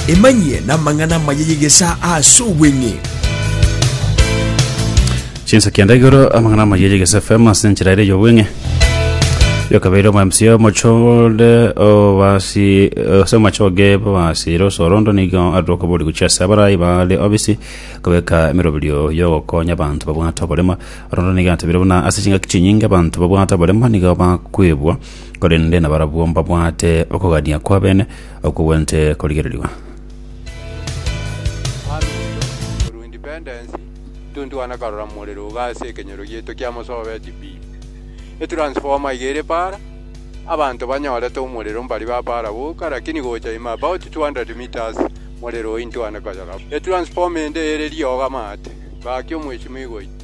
Emanyie namang'ana amaya y'egesaa ase obweng'e. Chinsa kianda igoro amang'ana amaya yegese FM ase enchera ere yobweng'e yokabeire omo MC omochode obasi ase omachoge babasire osorondo nigo adoka bori gochia ase abarai bare obisi kobeka emeroberio yogokonya abanto babwate oborema rondo nigo atebire buna ase chingaki chinyinge abanto babwate oborema nigo bakwebwa korende nabarabwo mbabwate okogania kw'abene okwo gwente korigererigwa. Aruto ru independence tontwana karora morero iga ase ekenyoro gieto kia mosobeti pi e transformer iga ere para abanto banyorete omorero mbari ba para boka lakini gocha ime about 200 metres morero ointwane koyora e transformer ende ere riogo amaate gaki omweshimiwa oito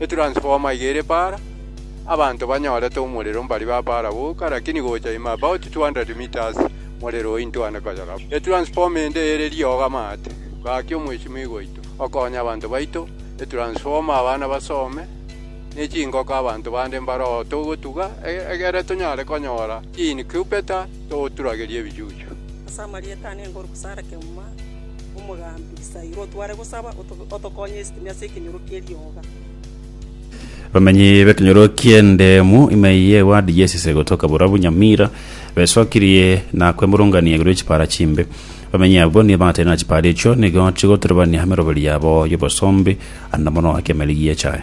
Etransformer iga ere para, abanto banyorete omorero mbari ba para boka, lakini gocha ime about 200 metres morero oyio ntwane koyoraba. Etransformer ende ere riogo amaate. Gaki omweshimiwa oito, okonye abanto baito, etransformer abana basome, ne chingoko abanto bande mbare oo togotuga, e- egere tonyare konyora chi-incubator toturagerie ebichuchu. Ase amarieta ane ngoru gosara kegima. Omogambi, Saira otware gosaba, otokonye esitimi ase ekenyoro kerioga. Bamenyi b'ekenyoro ki'ende mu ime y'ewadi y'esese gotoka borobwo Nyamira besokirie na kwemurungania igoro y'echipara chimbe. Bamenyi abwo nigo bagateire na chipara echio nigo chigoturubania emeroberi yabo y'obosombi, ande mono ake emeri gi'echae.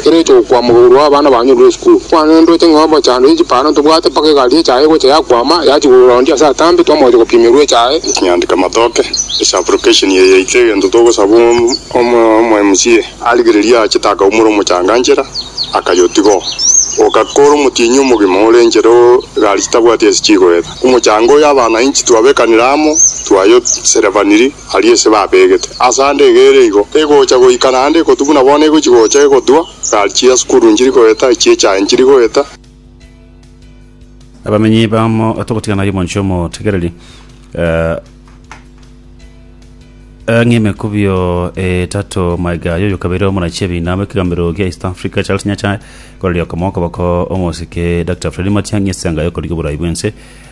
Ekero ocha gokwama igoro abana banyorire esukuru, kwanendote ng'a obochando y'echipara ntobwate mpaka egari echaye egocha yakwama yachi korwa round ase atambe twamogocha gopimerwa echaye. Kinyandika matoke ase application eye yaito egento togosaba omomca arigererie aachete akaumora omochanga nchera akayotiga oo. Ogakora omotienyi omogima ore nchera oo egari chitabwati ase chigoeta. Omochanga oyo abananchi twabekanire amo twayoserebaniri. aria ase babegete. Ase ande egere igo, egocha goika naende ekotu buna bono egochi gocha egotwa, gari chia sukuru nchiri goeta, echie chaye nchiri goeta. Abamenyi bamo togotigana yomonche omotegereri ang'e emekubio etato maiga yoyokabeire omonachi ebina bw'ekegambero gia East Africa Charles Nyachae koreri okomo okoboko omosike Dr Freddy Matiang'i ase enga yokorigia oborai bw'ense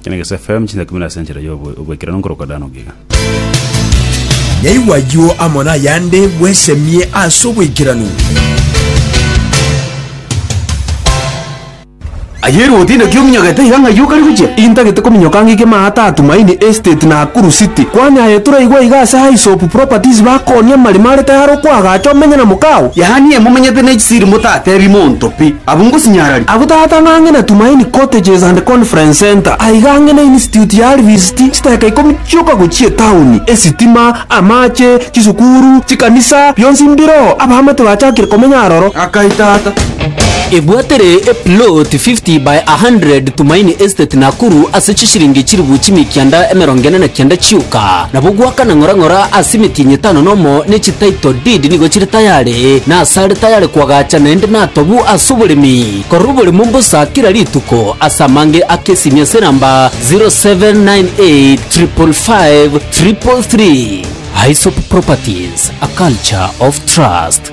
Ekeregeso FM, chinsa kumi na ase enchera y'obo- obwekeranu nkorokwa Dan ogiga. Nyaigwa ayio amo nayande bwesemie ase obwekeranu. Aye ere otinde ki ominyogete iga ng'ai okari gochia? Intagete kominyoka ng'ike maata a Tumaini Estate Nakuru City. Kwani aye toraigwa iga ase Highsop Properties bakooni amarimo are tayari okoagacha omenye na mokao? Yaani emumenyete nechisiri motatebie monto pi. Abwo ngosinyararia. Abwo tata ng'ang'e na Tumaini Cottages and Conference Centre, aiga ang'e na Institute ya Harvest, chiteka ikomi chioka gochia etaoni, esitima, amache, chisukuru, chikanisa, bionsi mbiro, abaamate bachakire komenya aroro. Akai tata. Ebwatire eplot 50 by 100 Tumaini Estate Nakuru ase chishilingi chilifu chimia ekianda emerongo ene na kianda chioka. Nabo gwakana ng'ora ng'ora ase emetienyi etano nomo ne chititle deed nigo chire tayari. Ee, nasare tayare koagacha naende natobu ase oboremi korwa oborimo mbosa kera rituko ase amange ak'esimi ase enamba 0798555333. Aesop Properties, a culture of trust.